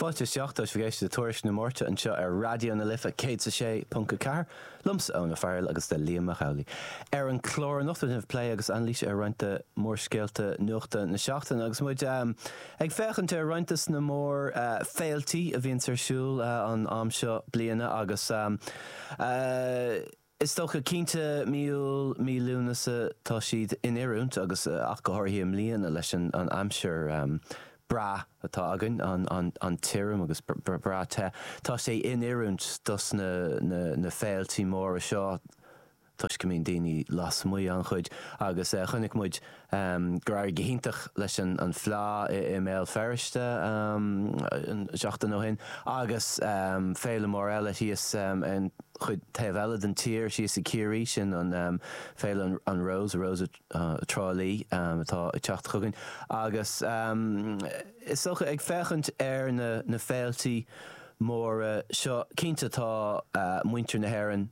Fáilte isteach tá sibh ag éisteacht le Tuairisc na Márta anseo ar Raidió na Life 106.4 liomsa Eoin Ó Fearghail agus le Liam Mac Amhlaigh ar an chlár anocht beidh plé agus anailís ar roinnt de mhórscéalta nuachta na seachtaine agus muid ag féachaint ar roinnt de na mór féiltí a bhíonns ar siúl an am seo bliana agus Is dócha, cinnte, mí Iúil, mí Lúnasa, tá siad in oiriúint agus ach go háirithe i mbliana leis an aimsir bhreá atá againn, an-tirim agus breá te. Tá sé in oiriúint dos na féiltí móra seo toisc go mbíonn daoine lasmuigh, an-chuid, agus chonaic muid um, gur éirigh go hiontach leis an bhFleadh i mBéal Feirste um seachtain ó shin agus um féile mhór eile thíos um ar an chuid taobh eile den tír, thíos i gCiarraí, sin um féile an Rose, Rose of Tralee um atá ag teacht chugainn agus um is dócha ag féachaint ar na na féiltí móra seo, cinnte tá uh muintir na hÉireann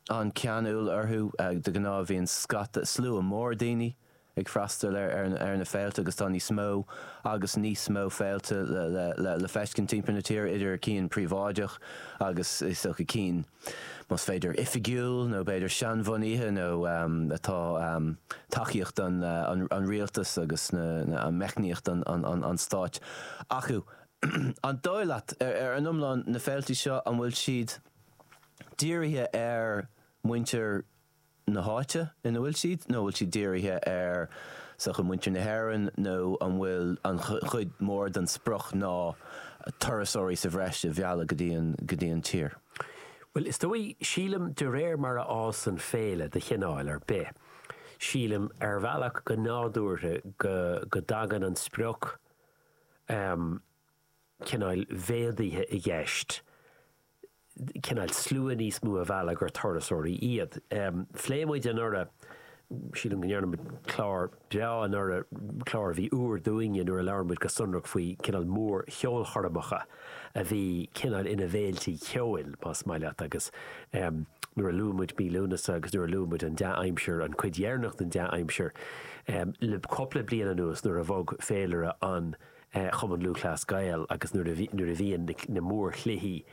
an-cheanúil orthu, de ghnáth, bíonn scata, slua mór daoine ag freastal ar na féilte agus tá níos mó agus níos mó féilte le feiscint timpeall na tíre, idir cinn príobháideacha agus is dócha cinn, más féidir, oifigiúil nó b'fhéidir seanbhunaithe nó atá tacaíocht an rialtais agus meicníocht an stáit acu. An dóigh leat, ar an iomlán, na féilte seo, an bhfuil siad. dírithe ar mhuintir na háite ina bhfuil siad, nó an bhfuil siad dírithe ar sochaí, muintir na hÉireann, nó an bhfuil an chuid mhór den sprioc ná turasóirí sa bhreis a mhealladh go dtí an tír? Bhuel, is dóigh, sílim, de réir mar a fhásann féile de chineál ar bith, sílim, ar bhealach, go nádúrtha, go dtagann an sprioc, cineál méadaithe i gceist, cineál slua níos mó a mhealladh gur turasóirí iad. Phléigh muid anuraidh, sílim go ndearna muid clár breá anuraidh, clár a bhí úr dúinne, nuair a labhair muid go sonrach faoi cineál mór-cheolchoirmeacha a bhí cineál ina bhféiltí ceoil, más maith leat, agus nuair a luaigh muid mí Lúnasa agus nuair a luaigh muid an dea-aimsir, an chuid dheireanach den dea-aimsir le cupla bliain anuas nuair a bhog féilire an Chumainn Lúthchleas Gael agus nuair a bhíonn na mórchluichí,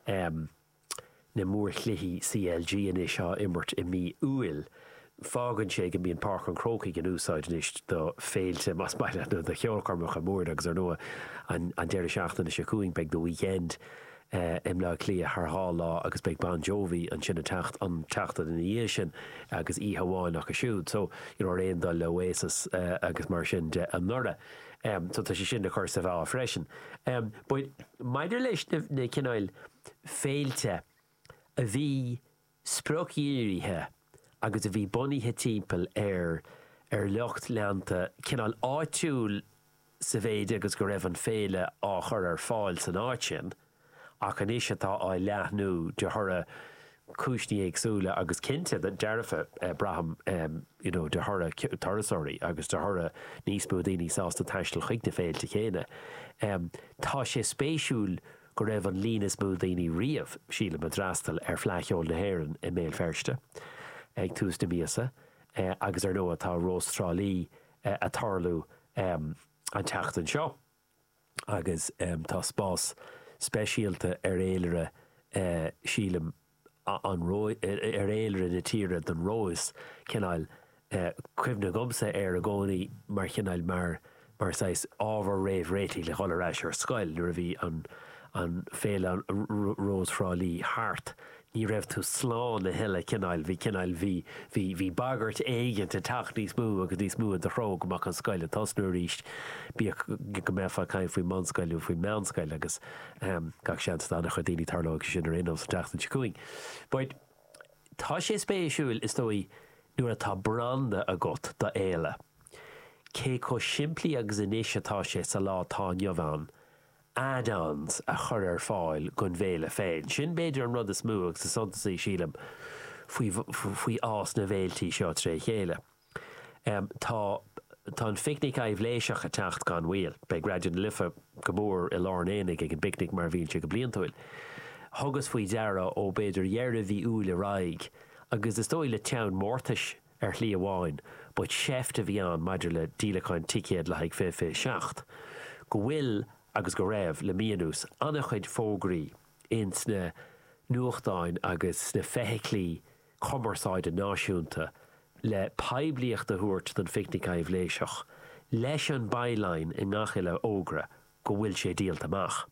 na mórchluichí CLG anois, á imirt i mí Iúil, fágann sé go mbíonn Páirc an Chrócaigh in úsáid anois do féilte, más maith leat, nó do cheolchoirmeacha móra agus ar ndóigh an deireadh seachtaine seo chugainn beidh The Weeknd i mBleá Cliath thar dhá lá agus beidh Bon Jovi ansin an tseachtain ina dhiaidh sin agus oíche amháin acu siúd. So, you know, ar aon dul le Oasis agus mar sin de anuraidh. so tá sé sin le cur sa mheá freisin. Ach maidir leis na cineáil féilte a bhí spriocdhírithe agus a bhí bunaithe timpeall ar ar lucht leanta cineál áitiúil sa mhéid agus go raibh an féile á chur ar fáil san áit sin, ach anois atá á leathnú de thoradh cúinsní éagsúla agus cinnte, dearfa, braithim, you know de thoradh turasóirí agus de thoradh níos mó daoine sásta taisteal chuig na féilte céanna. Tá sé spéisiúil go raibh an líon is mó daoine riamh, sílim, a d'fhreastail ar Fhleadh Cheoil na hÉireann i mBéal Feirste ag tús na míosa agus ar nó tá Rós Trá Lí a' tarlú an tseachtain seo. agus tá spás speisialta ar fhéilire, sílim, an ar fhéilire na tíre don Róis cineál cuimhin agamsa air i gcónaí mar chineál mar mar saghas ábhar réamhréitigh le dhul ar ais ar scoil nuair a bhí an an féile Rós Thrá Lí thart. ní raibh tú slán a thuilleadh, cineál, bhí cineál, bhí, bhí, bhí bagairt éigint ag teacht níos mó agus níos mó i do threo go mbeadh an scoil ag tosnú arís, bíodh go mbeifeá ag caint faoin mbunscoil nó faoin meánscoil agus gach seans do an-chuid daoine tarlóidh sé sin ar aon nós an tseachtain seo chugainn. But tá sé spéisiúil is dóigh nuair atá branda agat do fhéile, cé chomh simplí agus anois atá sé sa lá atá inniu ann add-ons a chur ar fáil don bhféile féin. Sin b'fhéidir an rud is mó agus is suntasaí, sílim, faoi fhás na bhféiltí seo tré chéile. Tá tá an Phicnic Aibhléiseach ag teacht gan mhoill. Beidh Raidió na Life go mór i lár an aonaigh ag an bPicnic mar a bhíonn sé go bliantúil. Thugas faoi deara ó b'fhéidir dheireadh mhí Iúil ar aghaidh, agus is dóigh le teann mórtais, Ar shlí amháin, ba sheift a bhí ann maidir le díolacháin ticéad le haghaidh 2027 go bhfuil, agus go raibh le mí anuas, an-chuid fógraí ins na nuachtáin agus sna feithiclí cumarsáide náisiúnta le poiblíocht a thabhairt don Phicnic Aibhléiseach, leis an by-line i ngach uile fhógra go bhfuil sé díolta amach.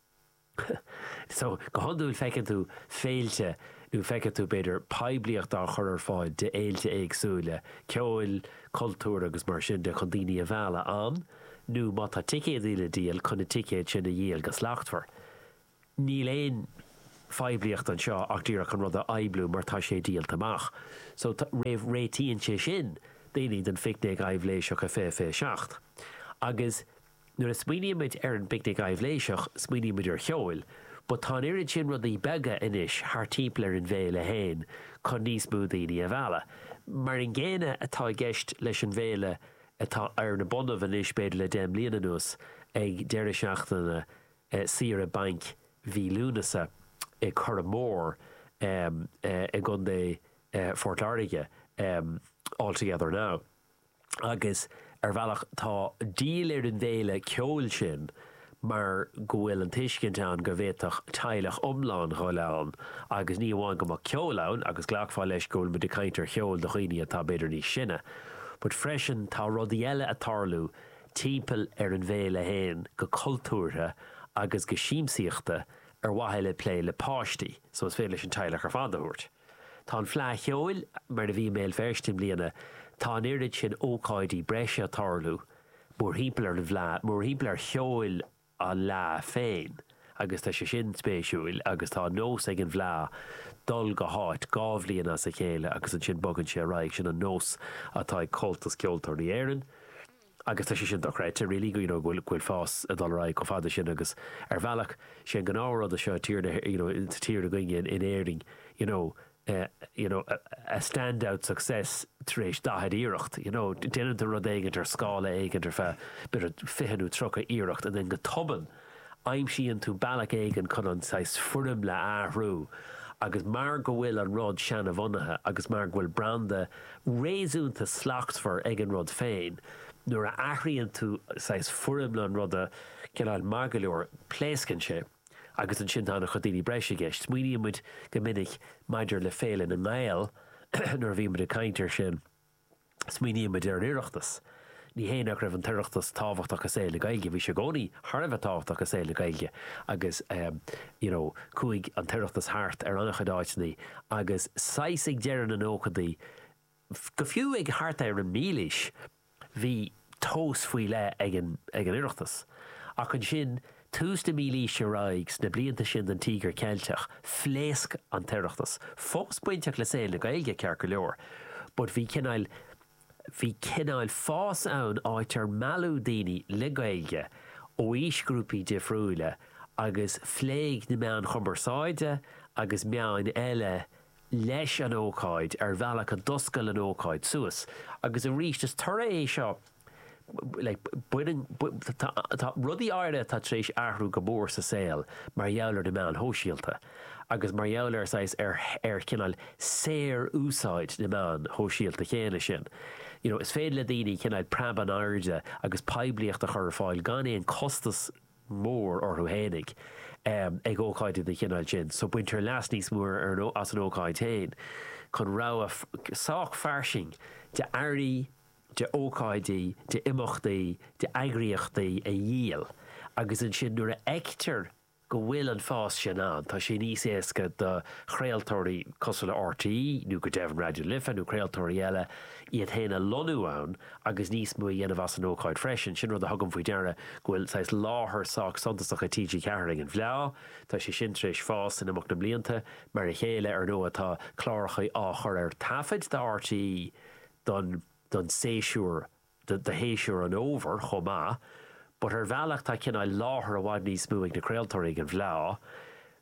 So, go hiondúil feiceann tú féilte, nó feiceann tú, b'fhéidir, poiblíocht á chur ar fáil d'fhéilte éagsúla, ceoil, cultúir agus mar sin de chun daoine a mhealladh ann, nó má tá ticéadaí le díol, chun na ticéid sin a dhíol go slachtmhar. Níl aon phoiblíocht anseo ach díreach an rud a phoibliú mar tá sé díolta amach. So, réitíonn sé sin daoine don phicnic aibhléiseach a fiche fiche seacht. Agus. Nuair a smaoinímid ar an bPicnic Aibhléiseach, smaoinímid ar cheol, but tá an oiread sin rudaí beaga anois thart timpeall ar an bhféile féin chun níos mó daoine a mhealladh. Mar an gcéanna atá i gceist leis an bhféile atá ar na bonnaibh anois b'fhéidir le deich mbliana anuas, ag deireadh seachtaine saoire bainc mhí Lúnasa i Curragh Mór i gContae Phort Láirge, All Together Now. Agus, ar bhealach, tá díol ar an bhféile ceoil sin mar go bhfuil an tuiscint ann go bhféadfadh teaghlach iomlán dhul ann agus ní amháin go mbeadh ceol ann, agus ghlacfá leis go bhfuil muid ag caint ar cheol do dhaoine atá b'fhéidir níos sine, but freisin tá rudaí eile ag tarlú timpeall ar an bhféile féin go cultúrtha agus go siamsaíochta ar mhaithe le plé le páistí, so is féidir leis an teaghlach ar fad a thabhairt. Tá an Fleadh Cheoil mar a bhí i mBéal Feirste i mbliana, tá an oiread sin ócáidí breise ag tarlú mórthimpeall ar an bhFleadh, mórthimpeall ar cheol an Fhleadh féin agus tá sé sin spéisiúil agus tá an nós ag an bhFleadh dul go háit dhá bhliain as a chéile agus ansin bogann sé ar aghaidh, sin an nós atá ag Comhaltas Ceoltóirí Éireann. agus tá sé sin dochreidte, really, go bhfuil fás ag dul ar aghaidh chomh fada sin agus ar bhealach, sé an gnáth-rud seo sa tír seo againne in Éirinn, you know, you know, a stand-out success tar éis daichead iarracht, you know, déanann tú rud éigint ar scála éigint ar feadh, b'fhéidir, fiche nó tríocha iarracht and then go tobann, aimsíonn tú bealach éigin chun an saghas foirmle a athrú agus mar go bhfuil an rud seana-bhunaithe agus mar go bhfuil branda réasúnta slachtmhar ag an rud féin, nuair a athraíonn tú saghas foirmle an ruda, cineál maith go leor, pléascann sé agus ansin tá ana chuid daoine breise i gceist. Smaoiníonn muid go minic maidir le Féile na nGael nuair a bhíonn muid ag caint ar sin, Smaoinímid ar an Oireachtas. Ní hé nach raibh an tOireachtas tábhachtach i saol na Gaeilge, bhí sé i gcónaí thar a bheith tábhachtach i saol na Gaeilge agus you know chuaigh an tOireachtas thart ar an-chuid áiteanna agus saghas ag deireadh na nóchaidí go fiú ag thart ar an mílaois, bhí tomhas faoi leith ag an Oireachtas. Ach ansin ó thús na mílaoise ar aghaidh, sna blianta sin den Tíogar Ceilteach, phléasc an tOireachtas. Fós bainteach le saol na Gaeilge, ceart go leor, but bhí cineál, bhí cineál fás ann áit ar mealladh daoine le Gaeilge ó aoisghrúpaí difriúila agus phléigh na meáin chumarsáide agus meáin eile leis an ócáid ar bhealach a d'oscail an ócáid suas. Agus arís, is toradh é seo, tá rudaí áirithe atá tar éis athrú go mór sa saol mar gheall ar na meáin shóisialta agus mar gheall ar saghas ar chineál saor-úsáid na meáin shóisialta chéanna sin. You know is féidir le daoine cineál preab in airde agus poiblíocht a chur ar fáil gan aon costas mór orthu fhéinig ag ócáidí den chineál sin so baintear leas níos mó as an ócáid féin chun rogha sách fairsing d'earraí, d'ócáidí, d'imeachtaí, d'eagraíochtaí a dhíol agus ansin nuair a fheictear go bhfuil an fás sin ann tá sé níos éasca do chraoltóirí cosúil le RTÉ nó go deimhin Raidió Life nó craoltóirí eile iad féin a lonnú ann agus níos mó a dhéanamh as an ócáid freisin. Sin rud a thugaim faoi deara go bhfuil saghas láthair sách suntasach ag TG4 ag an bhFleá. Tá sé sin tar éis fás in imeacht na mblianta. Mar a chéile, ar ndóigh, tá cláracha á chur ar taifead do RTÉ don don séasúr, do shéasúr an fhómhair chomh maith. But ar bhealach tá cineál láthair i bhfad níos mó ag na craoltóirí ag an bhFleá.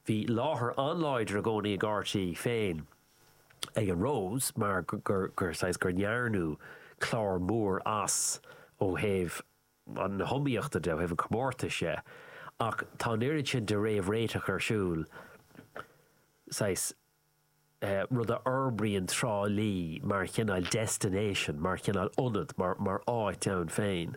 Bhí láthair an-láidir i gcónaí ag RTÉ féin. ag an Rose mar saghas gur ndearnadh clár mór as ó thaobh na hiomaíochta de, ó thaobh an chomórtais de, ach tá an oiread sin de réamhréiteach ar siúl, saghas rud a fhorbraíonn Trá Lí mar chineál destination, mar chineál ionad, mar áit ann féin,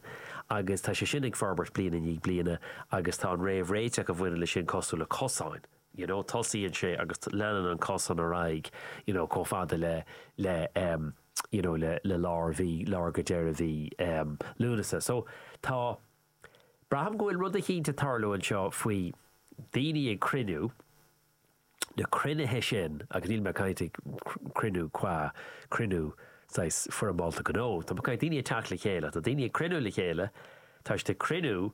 agus tá sé sin ag forbairt bliain i ndiaidh bliana agus tá an réamhréiteach a bhaineann leis sin cosúil le cosáin, you know, tosaíonn sé agus leanann an cosán ar aghaidh, you know, chomh fada le, le, um, you know, le, le lár mhí, lár go deireadh mhí, um, Lúnasa. So, tá, braithim go bhfuil rud eicínt ag tarlú anseo faoi daoine ag cruinniú, na cruinnithe sin, agus níl mé ag caint ag cruinniú cua, cruinniú saghas foirmeálta gnó, tá mé ag caint daoine ag teacht le chéile, tá daoine ag cruinniú le chéile, tá siad ag cruinniú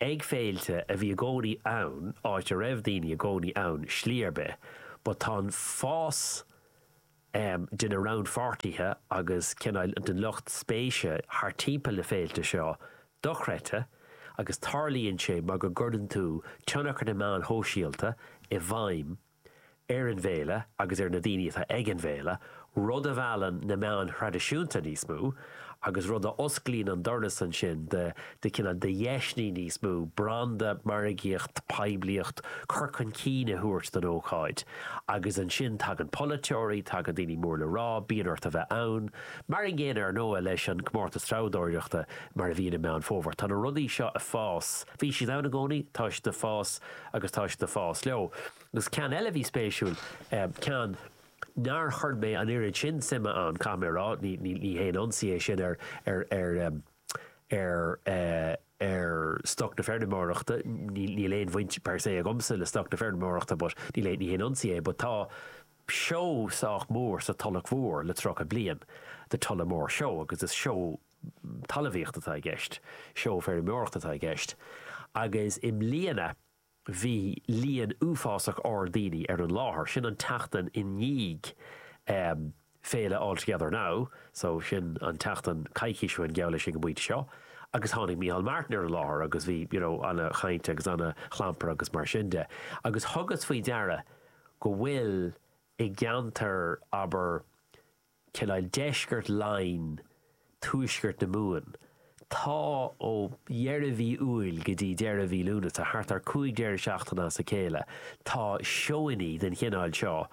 Ag féilte a bhí i gcónaí ann, áit a raibh daoine i gcónaí ann slí ar bith, but tá an fás de na rannpháirtithe agus cineál den lucht spéise thart timpeall na féilte seo dochreidte agus tarlaíonn sé mar go gcuireann tú tionchar na meáin shóisialta i bhfeidhm ar an bhféile agus ar na daoine atá ag an bhféile, rud a mheallann na meáin thraidisiúnta níos mó agus rud a osclaíonn an doras ansin do cineál de dheiseanna níos mó branda, margaíocht, poiblíocht, cur chun cinn a thabhairt don ócáid. Agus ansin tagann polaiteoirí, tagann daoine mór le rá, bíonn ort a bheith ann. Mar an gcéanna, ar ndóigh, leis an gcomórtas treabhdóireachta mar a bhíonn i Meán Fómhair. Tá na rudaí seo ag fás, bhí siad ann i gcónaí, tá siad ag fás, agus tá siad ag fás leo. Agus ceann eile a bhí spéisiúil, ceann nár chuir mé an oiread sin suime ann, caithfidh mé a rá, ní haon ionsaí é sin ar stoc na feirmeoireachta, níl aon bhaint per se agamsa le stoc na feirmeoireachta but ní haon ionsaí é, but tá seó sách mór sa Tulach Mhór le tríocha bliain, The Tullamore Show, agus is seó talmhaíocht atá i gceist, seó feirmeoireachta atá i gceist, agus i mbliana bhí líon uafásach ard daoine ar an láthair. Sin an tseachtain i ndiaidh féile All Together Now, so sin an tseachtain coicís ó shin, geall leis, ag an bpointe seo, agus tháinig Micheál Martin ar an láthair agus bhí, you know, an-chaint agus an-chlampar agus mar sin de. Agus thugas faoi deara go bhfuil i gceantar, abair, cineál deisceart Laighean, tuaisceart na Mumhan. Tá ó dheireadh mhí Iúil go dtí deireadh mhí Lúnasa, thart ar 5 deireadh seachtaine as a chéile, tá seónna den chineál seo,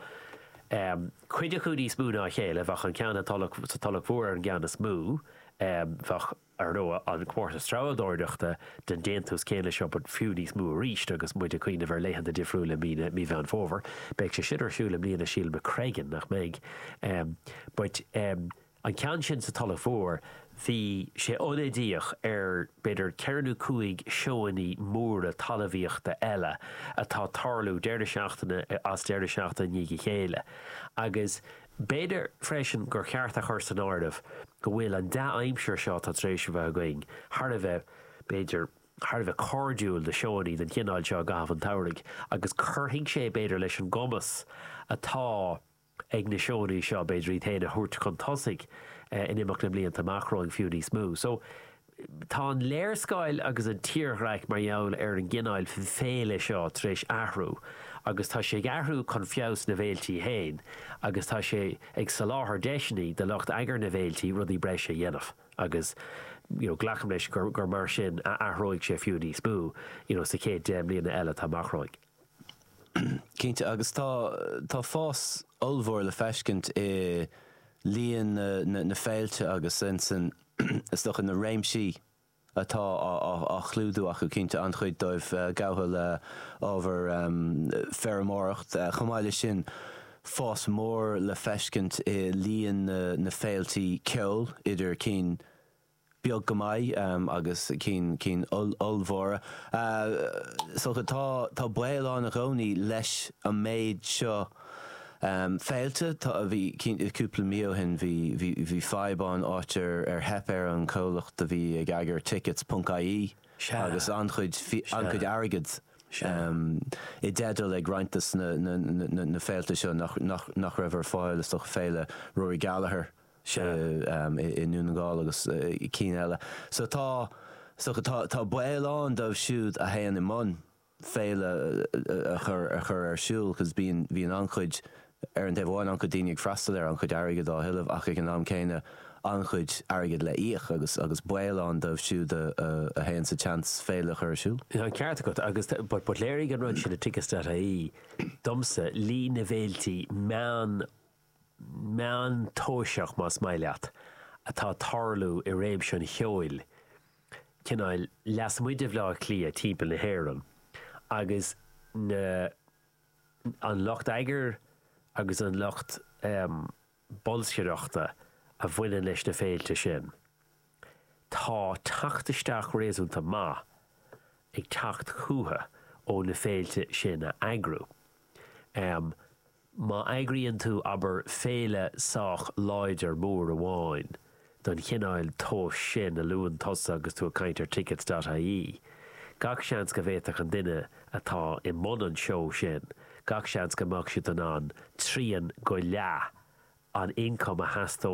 cuid acu níos mó ná a chéile, bheadh an ceann sa Tulach Mhór ar an gceann is mó, bheadh. Ar ndóigh, an comórtas treabhdóireachta den déantús céanna seo, but fiú níos mó arís agus muid ag cuimhneamh ar laethanta difriúla i mí na, mí Mheán Fómhair, beidh sé sin ar siúl i mbliana, sílim, i Screggan, nach mbeidh? But an ceann sin sa Tulach Mhór, bhí sé ionadaíoch ar b'fhéidir ceithre nó cúig seónna móra talmhaíochta eile atá ag tarlú deireadh seachtaine is deireadh seachtaine i ndiaidh a chéile agus B'fhéidir freisin gur cheart a chur san áireamh go bhfuil an dea-aimsir seo atá tar éis a bheith againn thar a bheith, b'fhéidir, thar a bheith cairdiúil do sheónna den chineál seo i gcaitheamh an tsamhraidh agus cuirfidh sé, b'fhéidir, leis an gcumas atá ag na seónna seo, b'fhéidir, iad féin a thabhairt chun tosaigh in imeacht na mblianta amach romhainn fiú níos mó. So. Tá an léarscáil agus an tírdhreach mar gheall ar an gcineáil féile seo tar éis athrú agus tá sé ag athrú chun feabhas na bhféilte féin agus tá sé ag soláthar deiseanna do lucht eagair na bhféilte rudaí breise a dhéanamh agus glacaim leis gur mar sin a athróidh sé fiú níos mó sa chéad deich mbliana eile atá amach romhainn. Cinnte, agus tá fás ollmhór le feiscint i líon na féilte agus insan. Is dócha na réimsí atá á chlúdú acu, cinnte, an-chuid dóibh gabhtha le ábhar feirmeoireacht. Chomh maith leis sin, fás mór le feiscint i líon na féilte ceoil, idir cinn beag go maith agus cinn ollmhóra. Is dócha tá baol ann i gcónaí leis an méid seo, Féilte, tá, bhí, cinnte, cúpla mí ó shin, bhí, bhí, bhí fadhb ann, áit ar, ar theip ar an comhlacht a bhí ag eagar Tickets ponc IE Sea. agus an-chuid, Sea. an-chuid airgid Sea. i dteideal ag roinnt de na, na, na, na, na féilte seo nach, nach, nach raibh ar fáil, is dócha, Féile Rory Gallagher Sea. i, i nDún na nGall agus cinn eile. So tá, so tá, tá baol ann dóibh siúd a théann i mbun, féile a chur ar siúl cos bíonn an-chuid, ar an taobh amháin, an-chuid daoine ag freastal air, an-chuid airgid á thuilleamh ach ag an am céanna an-chuid airgid le íoc agus agus baol ann dóibh siúd a théann sa tseans féile a chur ar siúl. Tá an ceart agat agus but léirigh an rud sin le Tickets.ie domsa líon na bhféilte meán meántoiseach, más maith leat, atá ag tarlú i réimse an cheoil, cineál lasmuigh de Bhleá Cliath timpeall na hÉireann, agus na, an lucht eagair agus an lucht bolscaireachta a bhaineann leis na féilte sin. Tá teacht isteach réasúnta maith ag teacht chucu ó na féilte sin a eagrú. Má eagraíonn tú, abair, féile sách láidir mór amháin den chineál tomhais sin a luann tusa agus tú ag caint ar tickets dot ie, gach seans go bhféadfadh an duine atá i mbun an seó sin, gach seans go mbeadh siad in ann trian go leath an ioncaim a theastódh